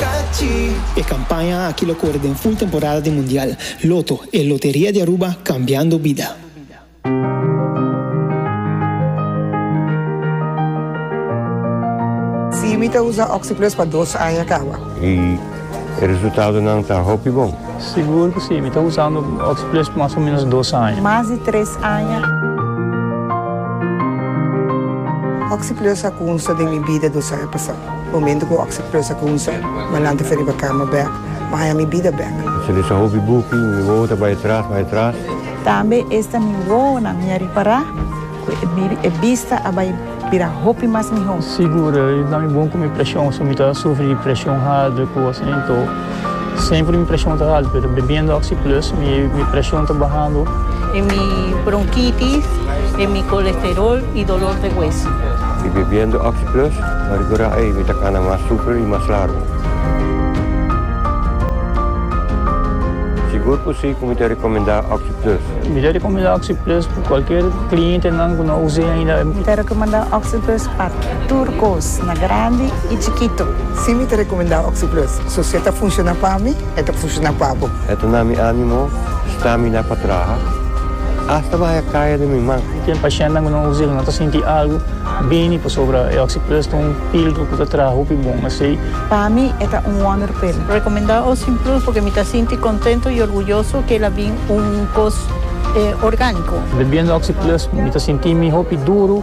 Catchy! E campaña aki lo core den full temporada di Mundial. Lotto, e loteria di Aruba cambiando bida. Sí, mi ta usa Oxyplus pa dos aña kawa. I e resultadonan ta hopi bon. Sigur cu sí, mi ta usando Oxyplus pa mas o menos dos aña. Mas di tres aña. Oxyplus a cunsta den mi bida dos aña pasa. Momento cu oc sa presa cu un ser malante fo riba cama bek, Maya mi bida bek. Sa desa hopi buki, mi wowo ta bay atras, bay atras. Tambe esta mi wowonan mi a ripara cu e biri, e bista a bay bira hopi mas miho. Sigur, i na mi bon cu mi presion, so mi ta sufri di presion harder cu asina, into. Semper mi preshon ta haltu, pero bebiendo Oxi Plus mi preshon ta bahando. E mi bronkitis, e mi kolesterol i dolor de hueso. Mi bebiendo Oxi Plus, pa rigora ei mi ta kana mas super i mas largu. Sigur ku si ku mi ta rekomendá Oxi Plus. Mi ta rekomendá Oxi Plus pa kualker klientenan ku no a us'é ainda. Mi ta rekomendá Oxi Plus. pa tur kos, na grandi i chikitu. Si mi ta rekomendá Oxyplus, so si e ta funshoná pa mi, e ta funshoná pa bo. E ta na mi ánimo stramina pa traha, asta mi haya kaya den mi man. Ken pashentenan ku nan usa el, nan ta sinti algu bini pasobra e Oxyplus ta un píldora ku ta traha hopi bon asei. Pa mi e ta un wonderpil. Rekomendá Oxyplus pasobra mi ta sinti kontentu i orguyoso ku el a bin un kos orgániko. Bebiendo Oxyplus mi ta sinti mi hopi duru.